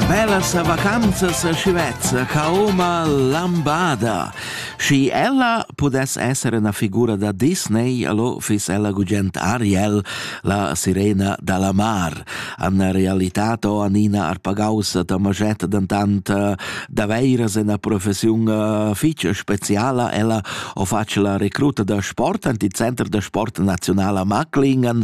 Bellas vacanzas a Scivezza cauma lambada. Schi ella pudess essere una figura da Disney, allo fis ella gugent Ariel, la sirena dalla mar. Anna realitate o Anina Arpagausa tamagetta dentant eh, daveiras una professiun eh, fitch speciala, ella o face la recruta da sport, anti center da sport nazionala Macklingen,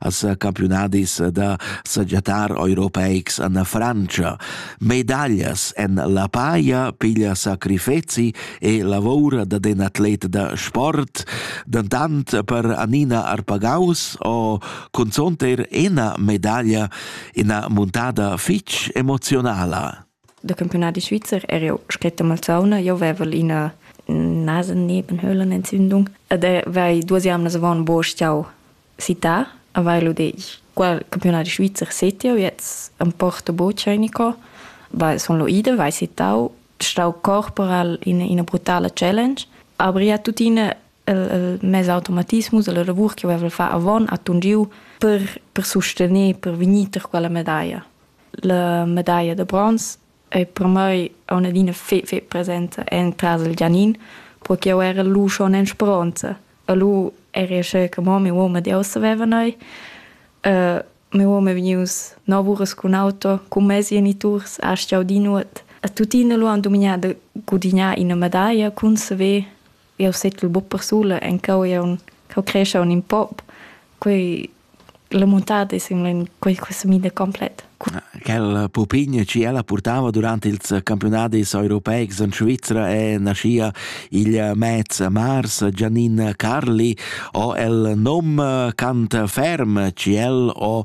as campiunadis da sagiatar europeics en Francia. Medaglias en la paia, piglia sacrifezi e lavora da den atlet da sport, dantant per Anina Arpagaus o conzonter ena medaglia ina muntada fitch emozionala. Da campiunadi svizzer er jau scret a Malsauna. Jau avevel ina nasen Nebenhöhlen Entzündung ed vai duas jamnas avant bo stau città a Vailu Dej. Qual campiunadi svizzer set jau jetzt am Porto Bocenico. Vai son lo ida, vai città, stau corporal in ina brutala challenge. Aber ja tuttina il, il mes automatismus, la lavur che avevel fa avon a tungiu per, per sustener, per vegnir per quella medaglia. la medaglia da bronz ei per mei aunc adina fetg fetg presenta entras il Gianin, perché jeu era lu schon en speronza e lu eri sche che mo mia uoma di ussa vevan ei. mia uoma è vegnius nov uras cun auto, cun mes geniturs, ha stau di nuot e tuttina lu han dumignà da gudignar ina medaglia cun saver jau settel buc persula encau jau cheu crescha un in pop quei la montade sembla in quei questa mida complet Quella pupigna che ella portava durante ils campionati europeics en Svizzera è naschia il mez mars Giannin Carli o el nom cant ferm che el ho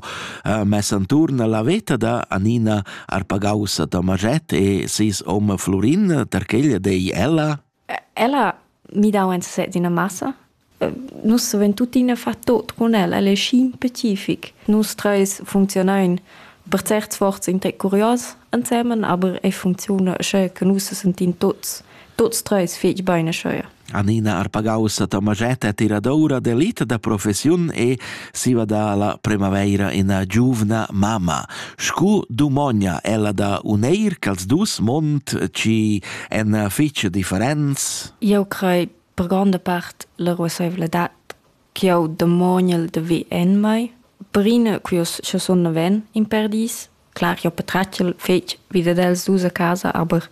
mess anturn la veta da Anina Arpagausa Tomaget e sis hom Florin, perché ella dei ella ella mi dau en sesez ina massa. Nus savein tuttina far tot con ella, ella è schi specific. Nus treis funzionein per certs sforzs in tec curios ensemen, aber ei funcziuna sche che nus sentin tots tots treis fetg bein scheuer. Anina Arpagaus, ta magetta tiradora d'elita da professiun e Siva da la premaveira ena giuvna mamma. Scu dumogna ella da uneir cha'ls dus mond chi èn fich differents? Eu crei per gronda part la ruassaivladad ch'eu dumognel da vi en mai. Brine, quio scha sun naven, in perdis, Clar, jau patratgel fetg vi dad els dus a casa, aber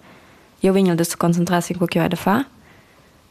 jau vegn da sa concentrar sin co ch'jau hai da far.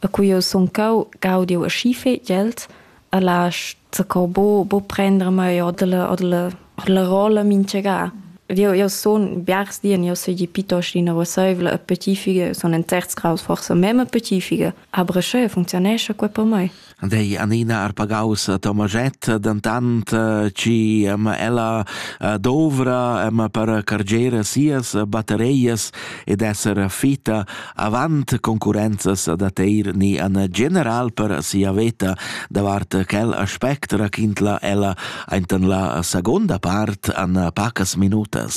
E cu jau sun cau, gaud jau aschi fetg els e lasch zaccò buc, buc prender mei oder la, oder la, oder la rolla mintgagà. Jau, jau sun biars di, jau seigi piuttost ina ruasseivla e patifica, sun en certs graus forsa memma patifica, aber sch'eu funcziunescha quai per mei. Dei Anina Arpagaus Tomaget, dentant eh, chi ehm, ella eh, dovra ehm, per cargere sias battereias ed esser fitta avant concurrenzas da teir ni an general per sia veta davart quel aspect raquintla ella ainten la seconda part an pacas minutas.